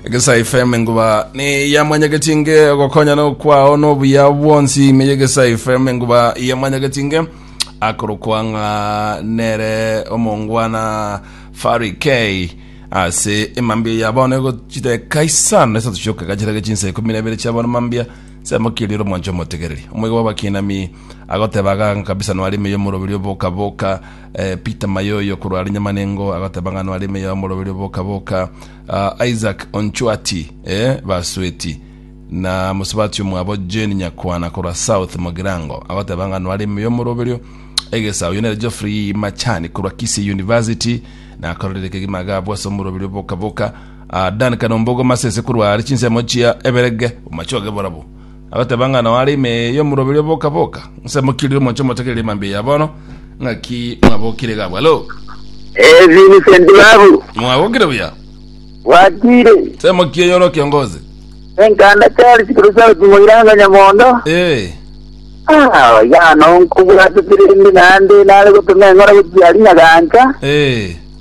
egesa fm enguba niyamwanyagetinge ogokonyana okwao nobuya bwonsi ime yegesa fm enguba yamwanyagetinge akorokwa ng'a nere omongwana fari k ase emambia ya bono egochiteka isano esato chioka gachirage chinsa ikumi na ibere chia bono mambia samokiri ro mwancho motegereri omwega bwa bakinami agoteba ganga kabisa nwari ime yomorobiri oboka boka Peter Mayoyo korwa are Nyamanengo agoteba ng'a nware emeyo y'omoroberio oboka-boka. Ah, Isaac Onchwati eh, Basweti na mosubati omwabo Jane Nyakwana korwa South Mogirango agoteba ng'a nware emeyo y'omoroberio egesa. Oyo nere Geoffrey Machani korwa Kisii University nakororire kegima agabwa ase omoroberio oboka-boka. Ah, Dan Kanombogo Masese korwa are chinsemo chia Eberege, omachoge borabo. Agateba ng'a nao are ime y'omoroberi o boka boka. Nse mokiri omoche motegerere emambia ya bono, ng'aki mwabokire iga abwo. Halo. Eh, Vincent babu, Mwabokire buya. bwatire. Nse mokie yore okiongozi. Enkanda Charles Kirusaut Moiranga Nyamondo. Eh. Ah, yano nkubwatire ndi nande nare gotuma eng'ora gochia ari nyagancha. Eh.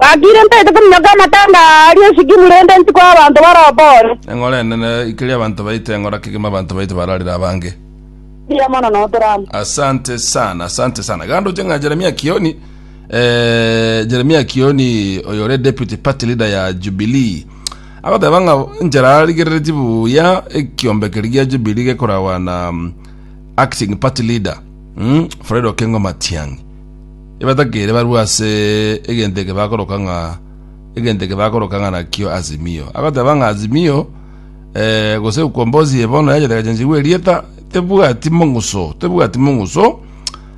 Gakire ntaete kominyoka amatanga aa aria esigimu rende ntikwa y'abanto barobore. Eng'ora enene ikeria abanto baito eng'ora kegima abanto baito bararire abange. Mbuya mono na otorama. Asante sana, asante sana. Gando oche ng'a Jeremia Kioni, eh, Jeremia Kioni oyo ore deputy party leader ya Jubilee. Agoteba ng'a enchera arigereretie buya ekiombe keri gia Jubilee gekorawa na mm, acting party leader, mm, Fred Okengo Matiang'i. Ebatakeire barue ase egento eke bakoroka ng'a egento eke bakoroka ng'a nakio Azimio. Agoteba ng'a Azimio eh, gose ukombozi ye bono yachete gachenchigwa erieta tebwati mong'uso tebwati mong'uso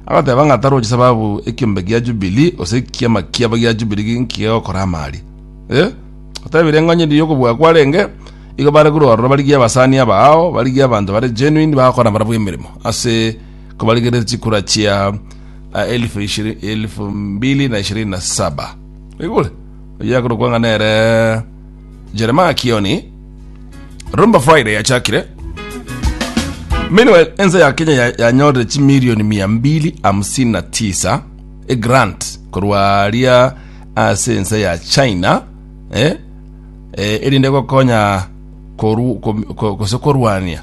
agoteba ng'a tarochi sababu ekiombe gia Jubilee gose ekiama kiabo gia Jubilee gi- nkigegokora amari eh? otebire eng'onye ndi yokobua kwarenge igo bare korwa ororo barigie abasani aba ao barigie abanto bare genuine bagokora barabwo emeremo ase kobarigerete chikura chia a elfu ishiri- elfu mbili na ishirini na saba igure oyakorokwa ng'a nere jeremaya kioni rumba friday yachakire meanwhile ense ya kenya ya- yanyorire chimilioni mia mbili hamsini na tisa egrant korwa ria ase ense ya china eh? eh, erinde gokonya koru- kom- ko- gose korwania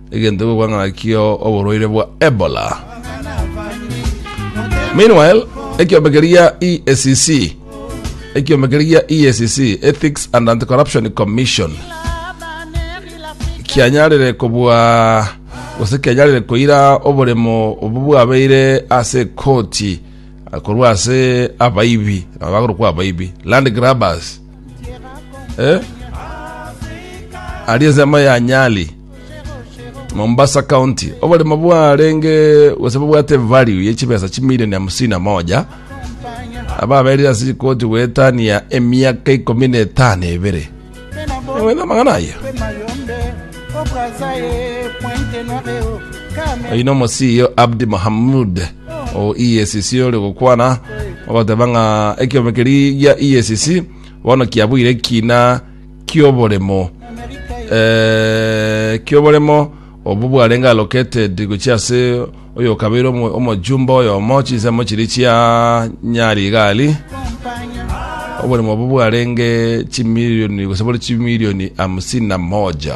egento ekogwa ng'aki oborwaire bwa Ebola. Meanwhile, ekiombe keria EACC ekiombe keria EACC Ethics and Anti-Corruption Commission kianyarire kobua gose kianyarire koira oboremo obo bwabeire ase koti korwa ase abaibi nabo bagorokwa abaibi land grabbers eh? ari ensemo ya nyali Mombasa County oboremo bwarenge gose bobwate value ye chibesa chimilioni hamsini na moja ababerire ase chikoti gwetania emiaka ikomi na etano ebere Ewe na magana aye oyi nomo CEO Abdi Mohamud o EACC ore gokwana ogoteba ng'a ekiombe keri gia EACC bono kiabuire kina ki'oboremo, eh, ki'oboremo obwo bwarenge allocated gochia ase oyo okabeire omo- omojumbe oyomo chinsemo chiria chia Nyarigari oboremo obwo bwarenge chimilioni gose bore chimilioni hamsini na moja